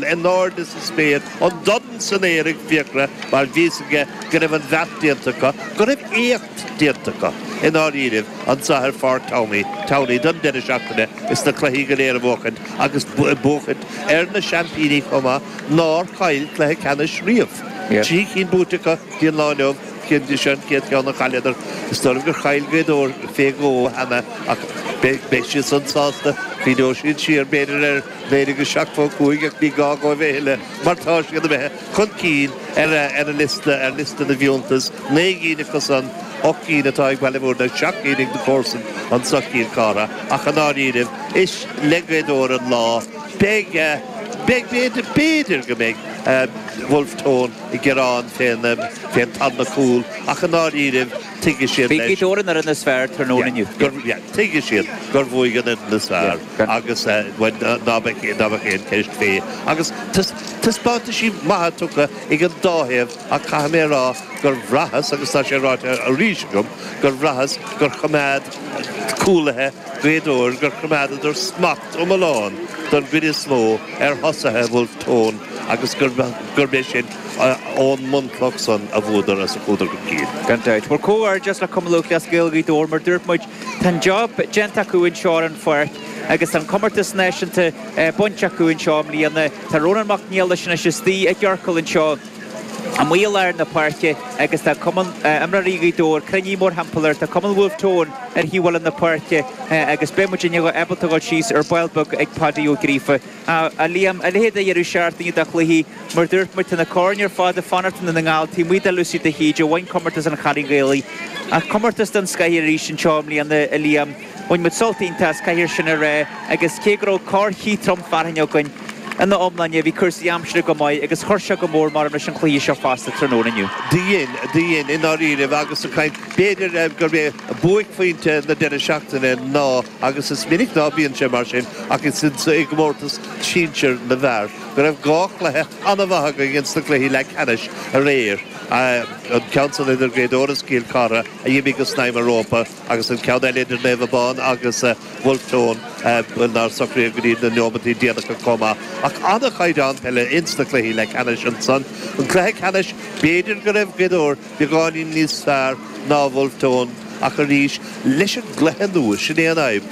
in airde sa spéir, an dorn san aer ag Fiachra mar bhí's aige go raibh an bheart déanta acu, go raibh éacht déanta acu, i ndáiríribh, anseo ar Pháirc Towney, Towney don deireadh seachtaine is na cluichí go léir a bhuachaint agus buachaint ar na seaimpíní chomh maith nár chaill cluiche ceannais riamh. Trí chinn buaite acu go dtí an lá inniu, seo an chéad cheann a chailleadar. Is dóigh liom gur chaill Gaoth Dobhair fé dhó cheana ach beidh siadsan sásta, cuimhneoidh siad siar b'fhéidir ar. B'fhéidir go seachtó cúig ach ní gá dóibh a thuilleadh mar tá siad imithe chun cinn ar an liosta, ar liosta na bhfiúntas, naoi gcinn acusan, ocht gcinn atá ag Baile Mhúirne agus seacht gcinn ag na comharsain anseo Cill Chartha ach i ndáiríribh is le Gaoth Dobhair an lá. Beidh, beidh, b'fhéidir, b'fhéidir go mbeidh Bhulf Tón ag gearán fén, fén tarna cúl ach i ndáiríribh tuigfidh siad Bhí leis, Gaoth Dobhair an fhoireann is fearr tráthnóna inniu. yeah, gur, yeah, tuigfidh siad gur bhuaigh an fhoireann is fearr. agus ná bheadh aon cheist faoi agus taispeántaisí maithe tugtha ag an dá thaobh ach caithfidh mé a rá gur bhraitheas agus tá sé ráite arís agam gur bhraitheas gur choimeád cúlaithe Gaoth Dobhair gur choimeádadar smacht iomlán don gcuid is mó ar thosaithe Bhulf Tón agus gurb é sin ón mbunchloch san a bhuadar as a chuadar chun cinn. Gan dabht. Bhuel comhghairdeas le Cumann Lúthchleas Gael Ghaoth Dobhair mar dúirt muid, Tá an job déanta acu anseo ar an pháirc agus tá an comórtas náisiúnta bainte acu anseo i mbliana. Tá Rónán Mac Niallais anois istigh i gciorcal anseo amuigh i lár na páirce agus tá cumann imreoirí Ghaoth Dobhair cruinnithe mórthimpeall air. Tá cumann Wolfe Tone ar thaobh eile na páirce agus beidh muid ábalta dul síos ar ball beag ag Padaí Ó Gríofa. A Liam, a leithéid a dheireadh seachtaine de chluichí mar dúirt muid, tá na coirn ar fad ag fanacht i nDún na nGall, taobh amuigh de Lucy de hÍde, a bhain comórtas an Chailín Ghaelaigh. Ach comórtas den scoth arís anseo i mbliana, a Liam. Bhain muid sult iontach as, caithfear sin a rá, agus cé go raibh corrchith trom fearthainne againn, ina iomláine, bhí cúrsaí aimsire go maith agus chuir seo go mór mh'anam leis an chluiche seo fosta tráthnóna inniu. Do dhein, do dhein, i ndáiríribh, agus an chaint, b'fhéidir gurb é buaicphointe na deireadh seachtaine ná, agus is minic ná bíonn sé mar sin ach is insa i gcomórtas sinsir na bhfear go raibh dhá chluiche an-mhaith againn ins na cluichí leathcheannais aréir, an ceann san idir Gaoth Dobhair is Cill Chartha a d'imigh go snaidhm an rópa agus an ceann eile idir Naomh Abán agus Bhulf Tón nár socraíodh go dtí na neomataí déanacha chomh maith. Ach an-chaighdeán peile ins na cluichí leathcheannais ansan. An cluiche ceannais b'fhéidir go raibh Gaoth Dobhair Beagáinín níos fearr ná Bhulf Tón ach arís leis an gcluiche nua, sin é an fhadhb.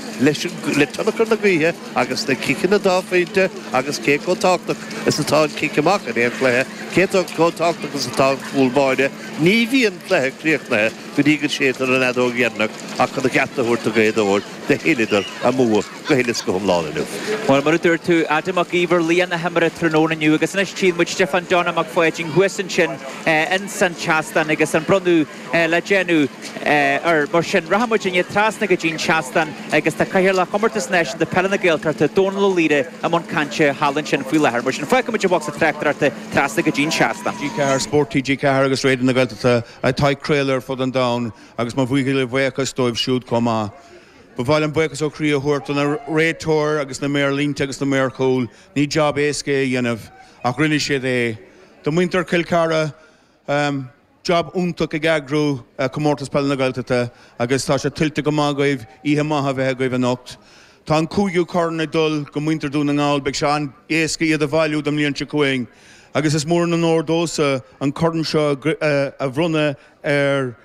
Le tionchar na gaoithe agus na ciceanna dá phointe agus cé chomh tábhachtach is atá an cic amach in aon chluiche, cé chomh tábhachtach is atá an cúl báire, ní bhíonn cluiche críochnaithe go dtí go séidtear an fheadóg dheireanach ach chun a gceart a thabhairt do Ghaoth Dobhair, do thuilleadar a mbua. go huile is go hiomlán inniu. Bhuel, mar a dúirt tú, Adam Mac Íomhair laoch na himeartha tráthnóna inniu agus anois tchíonn muid Stiofán Donnchadh Mac Pháidín thuas ansin ins an tseastán agus an bronnadh le déanamh air. Mar sin, rachaidh muid anois trasna go dtí'n seastán agus tá Cathaoirleach Chomórtas Náisiúnta Peile na Gaeltachta, Dónal Ó Laoire i mbun cainte thall ansin faoi láthair. Mar sin, fágfaidh muid an bocsa tráchtaireachta trasna go dtí'n seastán. TG4, Spórt TG4 agus Raidió na Gaeltachta atá ag craoladh ar fud an domhain agus mo bhuíochas dóibh siúd chomh maith. Ba mhaith liom buíochas ó chroí a thabhairt do na réiteoir agus na maoir líne agus na maoir chúil. Ní job éasca é a dhéanamh ach rinne siad é. Do muintir Chill Chartha, job iontach ag eagrú Comórtas Peile na Gaeltachta agus tá sé tuillte go maith agaibh. Oíche maith a bheith agaibh anocht. Tá an cúigiú corn ag dul go muintir Dhún na nGall. Beidh sé an-éasca iad a bhailiú don mbliain seo chugainn agus is mór an onóir domhsa an corn seo a bhronnadh ar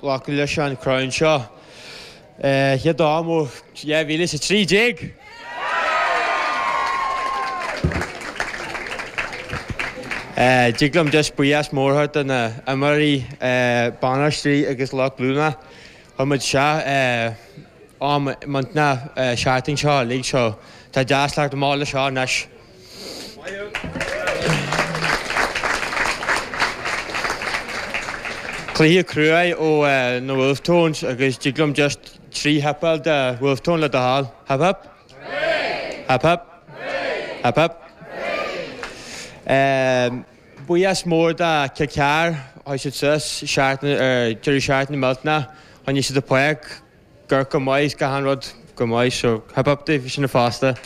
Glacadh leis an chrann seo i dTamhain 2013. D'fhag liom deis buí as mórthar de na h-imreoirí bainistearí agus lucht glúine chun muid seo am muinteanna seachtain seo uilig so tá deas leat go mall leis seo anois. Cluiche crua ó na Wolfe Tones agus dtig liom just trí hip-áil do Wolfe Tone le do thoil. Hip hip. Hooray! Hip hip. Hooray! Hip hip. Hooray! Buíochas mór do Cill Chartha, chuaigh siad suas seachtain, deireadh seachtaine millteanach, choinnigh siad an poic, Go raibh go maith is achan rud go maith so. Hip hip daoibh sin fosta.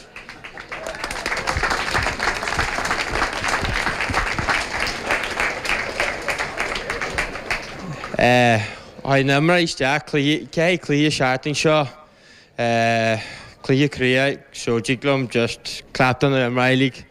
Tháinig na himreoirí isteach, cluiche, ceithre chluiche seachtain seo. Cluiche craoibhe, so thig liom just clap do na himreoirí like.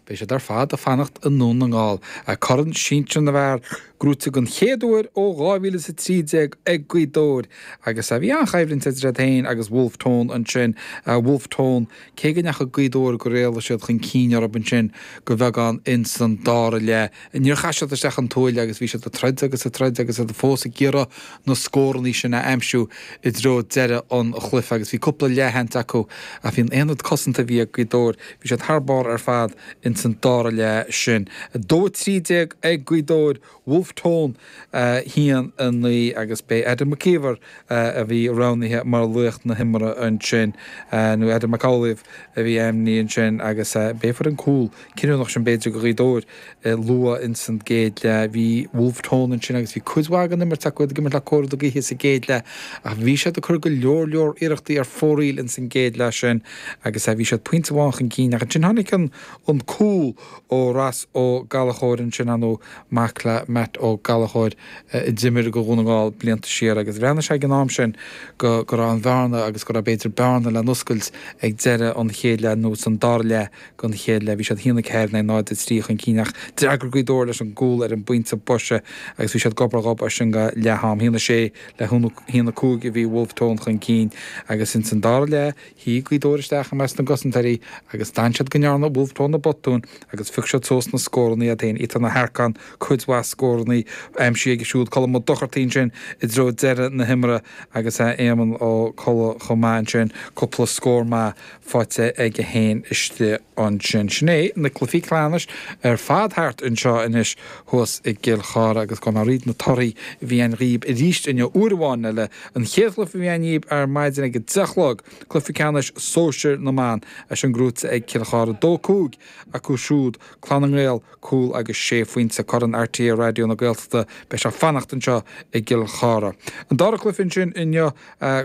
Beidh siad ar fad ag fanacht i nDún na nGall, agus corn sinsir na bhfear gnóite den chéad uair ó 2013 ag Gaoth Dobhair agus bhí an-choimhlint idir iad féin agus Bhulf Tón ansin agus Bhulf Tón, cé go ndeachaigh Gaoth Dobhair gur éalaigh siad chun cinn orthu ansin go bheagán ins an dara leath. Níor chaith siad isteach an tuáille agus bhí siad ag troid agus ag troid agus iad fós ag iarraidh na scórannaí sin a aimsiú i dtreo deireadh an chluife agus bhí cúpla leathsheans acu ach bhí an t-aonad cosanta a bhí ag Gaoth Dobhair Bhí siad thar barr ar fad ins an dara leath sin, 2-13 ag Gaoth Dobhair, Bhulf Tón 1-9, agus b'é Adam Mac Íomhair a bhí roghnaithe mar laoch na himeartha ansin, nó Adam Mac Íomhair a bhí ainmnithe ansin agus b'é a fuair an cúl cinniúnach sin b'fhéidir do Ghaoth Dobhair. luath ins an gcéad leath. Bhí Bhulf Tón ansin agus bhí cuid mhaith den imirt acu, iad ag imirt le cóir na gaoithe sa gcéad leath ach bhí siad ag cur go leor leor iarrachtaí ar fóraoil ins an gcéad leath sin agus aye bhí siad pointe amháin chun cinn ach ansin tháinig an an cúl ó Ross Ó Gallachóir ansin ar ndóigh mac le Matt Ó Gallachóir a d'imir do Dhún na nGall blianta siar agus bhreathnaigh sé ag an am sin go go raibh an bhearna agus go raibh b'fhéidir bearna le n-oscailt ag deireadh an chéad leath nó san dara leath. don chéad leath bhí siad 1-4 in aghaidh 0-3 chun cinn ach d'fhreagair Gaoth Dobhair leis an gcúl ar an bpointe boise agus bhí siad gob ar ghob as sin go leath-am. 1-6 le 1-5 a bhí Bhulf Tón chun cinn agus ins an dara leath shuigh Gaoth Dobhair isteach i measc na gcosantóirí agus d'fhan siad go ndearna Bhulf Tón na botúin agus phioc siad suas na scóranna iad féin. Ethan Harkin cuid mhaith scóranna aimsithe aige siúd, Colm Ó Dochartaigh ansin i dtreo deireadh na himeartha agus Éamonn Ó Colla chomh maith ansin, cúpla scór maith. faighte ag a haon istigh ansin. Sin é, na cluifí ceannais ar fad thart anseo anois thuas i gCill Chartha agus gabhfaidh mé thríd na torthaí a bhí ann dhíbh aríst inniu uair amháin eile. An chéad chluife a bhí ann dhíob ar maidin ag a deich a chlog, cluife ceannais sóisir na mban, é sin gnóite ag Cill Chartha dó cúig acu siúd, Clanna nGael, Cúl agus Sé Phointe, Corn RTÉ Raidió na Gaeltachta, beidh sé fanacht anseo i gCill Chartha. An dara cluiche ansin inniu,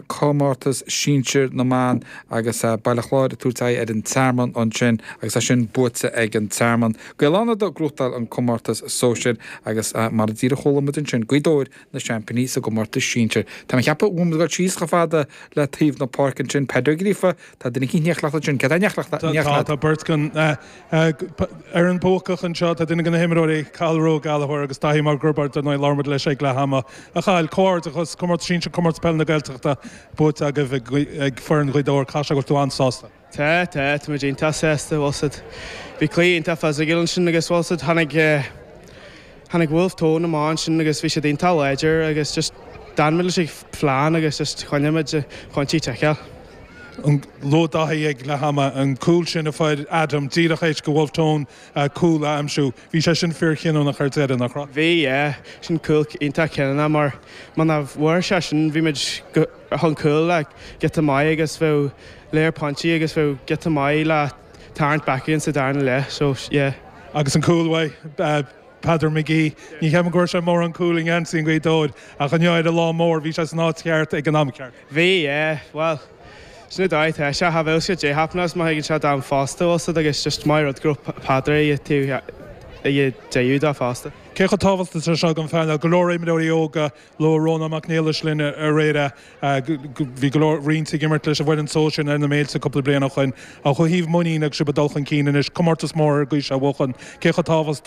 comórtas sinsir na mban agus Baile Chláir ag tabhairt aghaidh ar an Tearmann ansin agus é sin buaite ag an Tearmann. Gaeil Fhánada ag gnóthachtáil an comórtas sóisir agus mar a díreach chuala muid ansin, Gaoth Dobhair na seaimpíní sa gcomórtas sinsir. Tá mé ag ceapadh go bhfuil muid ag dul síos chomh fada le taobh na páirce ansin. Peadar Ó Gríofa, tá duine eicínt in éineacht leat ansin. Tá beirt den fhoireann bhuacach anseo tá duine de na himreoirí, Cathal Rua Gallachóir agus Daithí Mac Roibeaird ar ndóigh. Labhair muid leis ag leath ama. A Chathail, comhghairdeachas, comórtas sinsir Comórtas Peile na Gaeltachta buaite agaibh ag foireann Ghaoth Dobhair. Caithfidh sé go bhfuil tú an-sásta? Tá, tá, tá muid iontach sásta, bhfuil a fhios agat bhí cluiche iontach physical ansin agus bhfuil a fhios agat tháinig eh, Tháinig Wolfe Tone amach ansin agus bhí siad iontach láidir agus just d'fhan muid leis an phlean agus just choinnigh muid na pointí ag ticeáil. Luaigh Dáithí ag leath ama an cúl sin a fuair Adam díreach th'éis do Wolfe Tone an cúl a aimsiú. Bhí sé sin fíor chinniúnach ar deireadh, nach raibh? Bhí, yeah. Sin cúl iontach cinniúnach mar muna bhfuair sé sin bhí muid chun cúil giota maith agus bheadh lear pointí agus bheadh giota maith le, tarraingt back again sa darna leath so yeah. Agus an cúl ó Pheadar McGee, ní cheapaim go raibh sé mórán cúl i ngeansaí Ghaoth Dobhair ach inniu ar an lá mór, bhí sé san áit cheart ag an am ceart. Bhí, yeah. Bhuel, sin a d'oir tá sé, have uilse did happen agus má thuigeann sé d'am fosta also like it's just maith rud go raibh Peadar ag a taobh ag a deaúd dá fosta. Cé chomh tábhachtach atá seo don phainéal, go leor imreoirí óga Labhair Rónán Mac Niallais linn aréir. Bhí go leor, roinnt ag imirt leis an bhfoireann seo sna na Méilte cúpla bliain ó shoin. Ó thaobh muinín agus sibh ag dul chun cinn anois, comórtas mór ar an gcaoi seo a bhuachan, cé chomh tábhachtach atá